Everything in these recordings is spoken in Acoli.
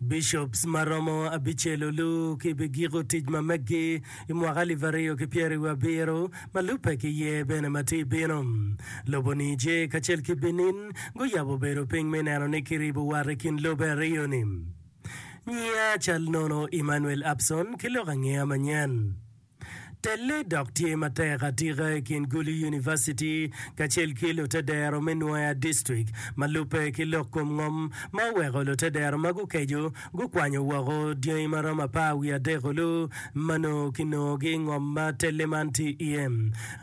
Bishops ma romo abicel olu ki bi giko tic ma meggi i mwaka alip aryo ki pyeri wi abiro ma lubbe ki ye bene ma ti bino. Lobo Niger kacel ki Benin guyabo bedo piny me neno ni ki ribo wat i kin lobbe aryo ni. Nyiya cal nono Emmanuel Abson ki lok angeya manyen. Telle dok tye matek atika i kin Gulu University kacel ki lutedero me Nwoya District ma lubbe ki lok kom ngom ma oweko lutedero ma gukeco gukwanyo woko dyangi ma romo apar wiye adek olu ma nongo kinongogi i ngom ma telle man tye iye.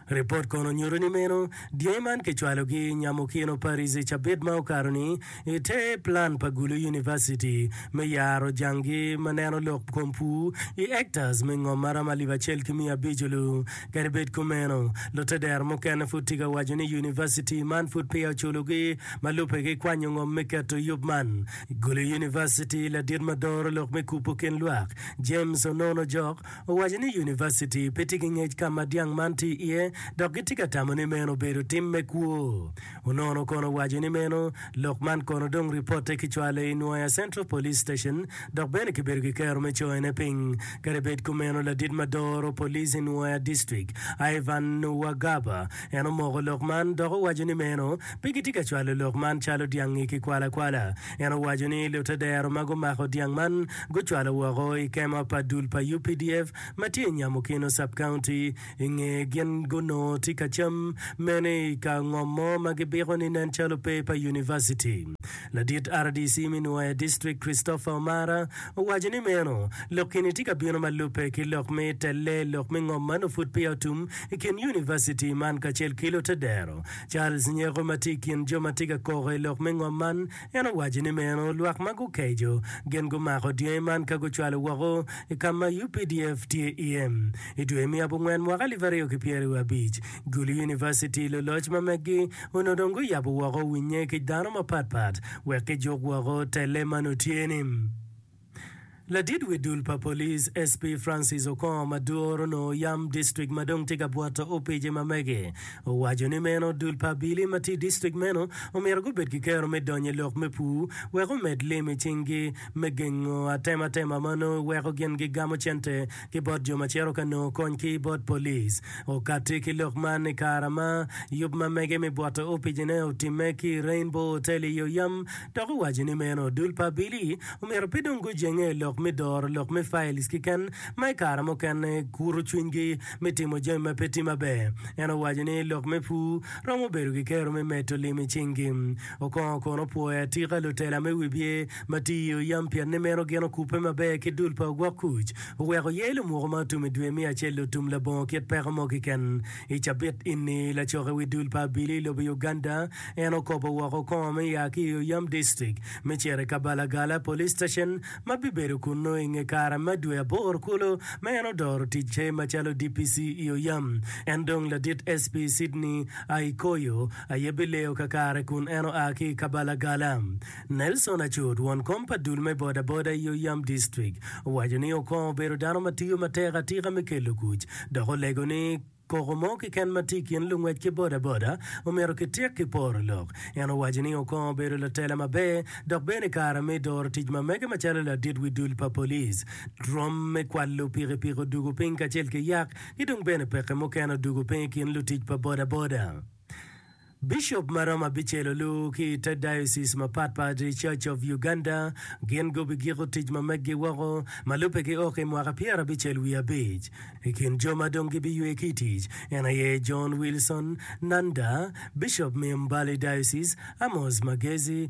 Ripot kono nyuto ni meno dyangi man kicwalogi nyamo kino pa Rizzi cabit ma okato-ni I te plan pa Gulu University me yaro janggi ma neno lok kom pur i hectares me ngom maromo alip acel ki miya abico lu, kadi bed kumeno, lutedero mukene pud tye ka waco ni University man pud peya oculogi ma lubbe gikwanyo ngom me keto i yub man. Gulu University ladit ma doro lok me kubo kin lwak, James Onon Ojok, owaco ni University pe tye ki ngec ka ma dyang man tye iye dok gitye ka tamo ni meno obedo tim me kwo. Onono kono owaco ni meno lok man kono dong ripote kicwalo i Nwoya Central Police Station dok bene kibedo ki kero me coyone piny. Kadi bed kumeno, ladit ma doro police i Nwoya District, Ivan Nuwagaba, en omoko lok man dok owaco ni meno pe gitye ka cwalo lok man calo dyangi ki kwala kwala. En owaco ni lute dero ma gumako dyang man gucwalo woko i kema pa dul pa updf ma tye i Nyamukino Sub-County, I nge gin gunongo tye ka cam mene i ka ngom mo ma gibiko ni nen calo pe pa univaciti. Ladit rdc me Nwoya District Christopher Omara owaco ni meno lok eni tye ka bino ma lubbe ki lok me telle lok me ngom ma nongo pud peya otum i kin univaciti man kacel ki lutedero. Charles Nyeko ma tye i kin jo ma tye ka koko i lok me ngom man En owaco ni meno lwak ma gukeco gin gumako dyangi man ka gucwalo woko i ka ma UPDF tye iye. I dwe me abongwen mwaka alip aryo ki pyeraryo abic, Gulu University luloc ma meggi onongo dong guyabo woko winnye ki dano mapatpat wek kijuk woko telle ma nongo tye-ni. Ladit wi dul pa polic, SP Francis Okongo ma duru onongo oyam dictrict ma dong tye ka bwoto opije ma mege, owaco ni meno dul pa abili ma tye i dictrict meno omyero gubed ki kero me donyo i lok me pur wek omed lim i cing gi me gengo atematema ma onongo weko gin gigamo cente ki bot jo ma cito ka nongo kony ki bot polic. Okatti ki lok man i kare ma yub ma mege mi bwoto opicine otimme ki i Rainbow Hotel i yo yam dok owaco ni meno dul pa Billy omyero pe dong gujenge i lok me doro lok me files kiken ma i kare mukene kuto cwinygi me timo jami ma pe tye maber. En owaco ni lok me pur romo bedo ki kero me medo lim i cingi. Okongo kono pwoyo atika lutela me wibye ma tye iye oyam pien ni meno gin okubbe maber ki dul pa ogwok kuc. Oweko ye lumuko ma otum i dwe me acel otum labongo kit peko mo kiken. I cabit ini, lacok i wi dul pa abili i lobo Uganda en okobo woko kongo me ya ki i oyam distrik me cito i Kabalagala Police Station ma bibedo kunnu i nge kare me dwe aboro kulu ma en odoro ticce macalo DPC i oyam. En dong ladit SP Sydney Aikoyo aye bileyo kakare kun en oa ki i Kabalagala. Nelson Acut, won kom pa dul me bodaboda i Oyam Distrik, owaco ni Okong obedo dano ma tiyo matek atika me kelo kuc, dok olego ni koko mo keken ma tye i kin lungwec ki bodaboda omyero kityek ki poro lok. En owaco ni Okong obedo latela maber dok bene kare me doro tic ma mege macalo ladit wi dul pa polic, rwom me kwalo pikipiki odugo piny kacel ki yak ki dong bene peke mukene odugo piny i kin lutic pa bodaboda. Bicop ma romo abicel olu ki i te diocese mapat pat i Church of Uganda. Gin gubigiko tic ma meggi woko. Ma lubbe ki ok i mwaka pyerabicel wiye abic, i kin jo ma dong gibiywe ki i tic, en aye John Wilson Nanda, Bicop me Mbale Diocese, Amos Magezi,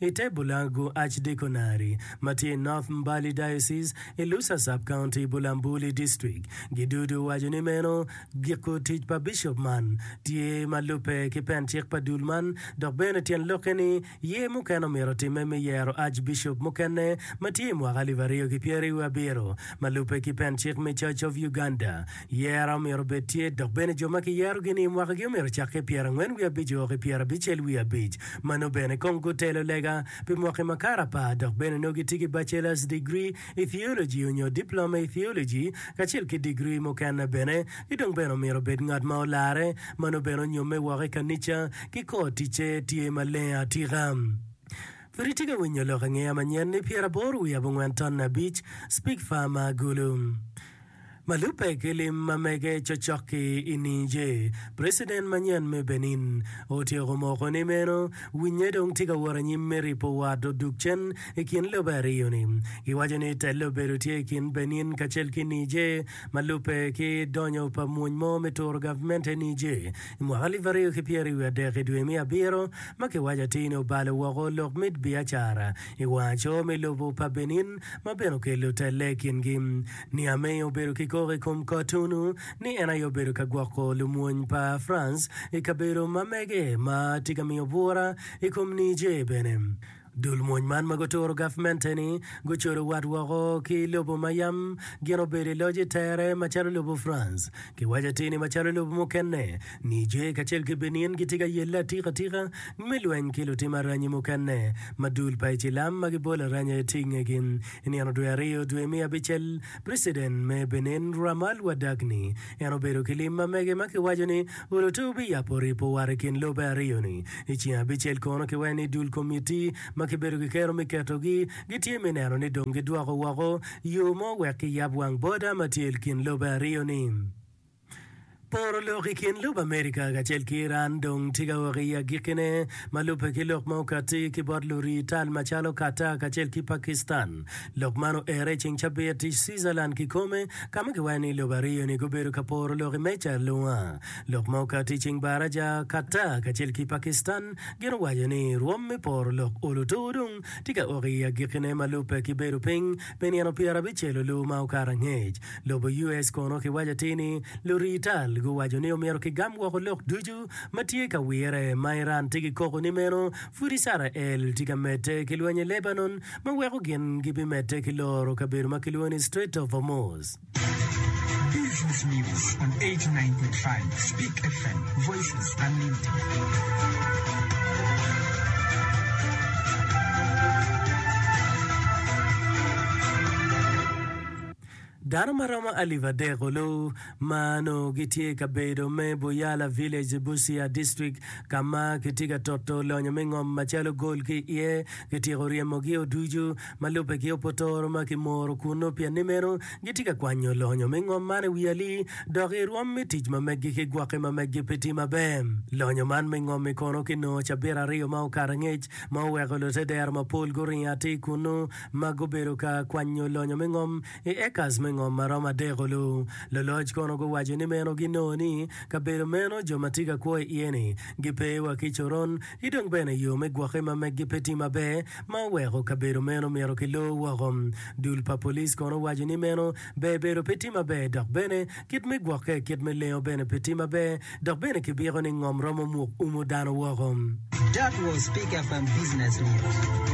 i te Bulagu Archdeaconary, ma tye i North Mbale Diocese, i Lusa Sub-County, Bulambuli District. Gidudu owaco ni meno giko tic pa bicop man. Tye ma lubbe ki pen cik pa dul man, dok bene tyen lokke ni ye mukene omyero otimme me yero Archbicop mukene ma tye i mwaka alip aryo ki pyeraryo wiye abiro, ma lubbe ki pen cik me Church of Uganda. Yero myero obed tye, dok bene jo ma kiyerogi-ni i mwakagi omyero ocak ki i pyerangwen wiye abic woko i pyerabicel wiye abic. Mano bene kong gutelo lega pi mwaki ma kare apar dok bene nongo gitye ki bachelor's degree i theology onyo diploma i theology kacel ki degree mukene bene. Ki dong bene omyero obed ngat ma olarre, mano bene onyomme woko i kanica ki kor ticce tye maleng atika. Pud itye ka winyo lok angeya manyen-ni? Pyeraboro wiye abongwen tonne abic, Speak Farmer, Gulu. Ma lubbe ki lim ma mege cocok-ki i Niger, preciden manyen me Benin otyeko moko ni meno winye dong tye ka wot anyim me ripo wat odug cen i kin lobe aryo-ni. Giwaco ni tel obedo tye i kin Benin kacel ki Niger ma lubbe ki donyo pa mwony mo me turo gavmente Niger i mwaka alip aryo ki pyera i wiye adek i dwe me abiro ma kiwaco atir ni obalo woko lok mit biacara i wanga co me lobo pa Benin ma bene okelo telle i kingi. Niamey obedo ki koko i kom Cotonou ni en aye obedo ka gwoko lumwony pa France i kabedo ma mege ma tye ka miyo bwura i kom Niger bene. Dul mwony man ma guturo gavmente-ni gucodo wat woko ki lobo ma yam gin obedo i loc i tere macalo lobo France. Kiwaco atir ni macalo lobo mukene, Niger kacel ki Benin gitye ka yelle atika tika me lweny ki lutim aranyi mukene ma dul pa icilam ma gibolo aranya aye tye i ngegi. I nino dwe aryo dwe me abicel, President me Benin Ramal Wadagni en obedo ki lim ma mege ma kiwaco ni olute obiyabo ripo war i kin lobe aryo ni. I ceng abicel kono ki wene ni dul komitti ma kibedo ki kero mi keto gi gitye mi neno ni dong gidwoko woko yo mo wek ki yab wang boda ma tye i kin lobe aryo ni. Poro lok i kin lub Amerika kacel ki Iran dong tika woko i agikkine, ma lubbe ki lok ma okatti ki bot lurii tal macalo Qatar kacel ki Pakistan. Lok man oerre i ceng cabit i Switzerland kikome, ka ma kiwaco ni lub aryo-ni gubedo ka poro lok i meja alunga. Lok ma okatti i ceng baraca, Qatar kacel ki Pakistan gin owaco ni rwom me poro lok olo two dong tika woko i agikkine ma lubbe ki bedo piny Pi nino pyera abicel-lu lu ma okato angec, lobo US kono kiwaco atir ni lurii tal guwaco ni omyero kigam woko lok ducu ma tye ka wire. Ma Iran tye ki koko ni meno, pud Icrael tye ka medde ki lweny i Lebanon ma weko gin gibimedde ki loro kabedo ma kilwongo ni Strait of Hormuz. Dano ma romo alip adek olu ma nongo gitye i kabedo me Buyala Village, Busia District, ka ma kitye ka toto lonyo me ngom macalo gol ki iye. Kityeko ryemogi ducu. ma lubbe ki opotoro ma kimoro kunnu pien ni meno gitye ka kwanyo lonyo me ngom man i wi ali dok i rwom me tic ma meggi ki gwokke ma meggi pe tye maber. Lonyo man me ngom-mi kono kinongo cabit aryo ma okato angec ma oweko lute dero mapol guringo atir kunnu ma gubedo ka kwanyo lonyo me ngom i ekas me ngom ma romo adek-o. Lu loloc kono guwaco ni meno ginongo ni kabedo meno jo ma tye ka kwo iye-ni gipe wa ki coron ki dong bene yo me gwokke ma meggi pe tye maber ma oweko kabedo meno myero kilor woko. Dul pa police kono owaco ni meno ber bedo pe tye maber dok bene kit me gwokke, kit me lengo bene pe tye maber dok bene kibiko ni ngom romo muk umo dano woko. That was Pick FM Business News.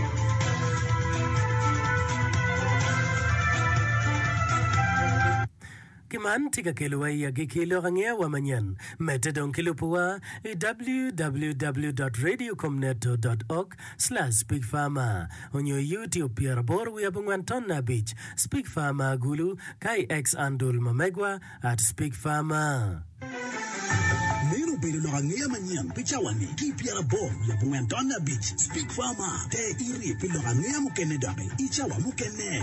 Ki man tye ka kelowa i agikki lok angeyawa manyen. Medde dong ki lubuwa i www dot radio com neto dot org slash Pig Farmer onyo i YouTube pyeraboro wiye abongwen tonne abic Spig Farmer Agulu ka i X andul ma megwa at Spig Farmer. Meno obedo lok angeya manyen pi cawa-ni ki i pyeraboro wiye abongwen tonne abic Spig Farmer. Te iri pi lok angeya mukene doki i cawa mukene.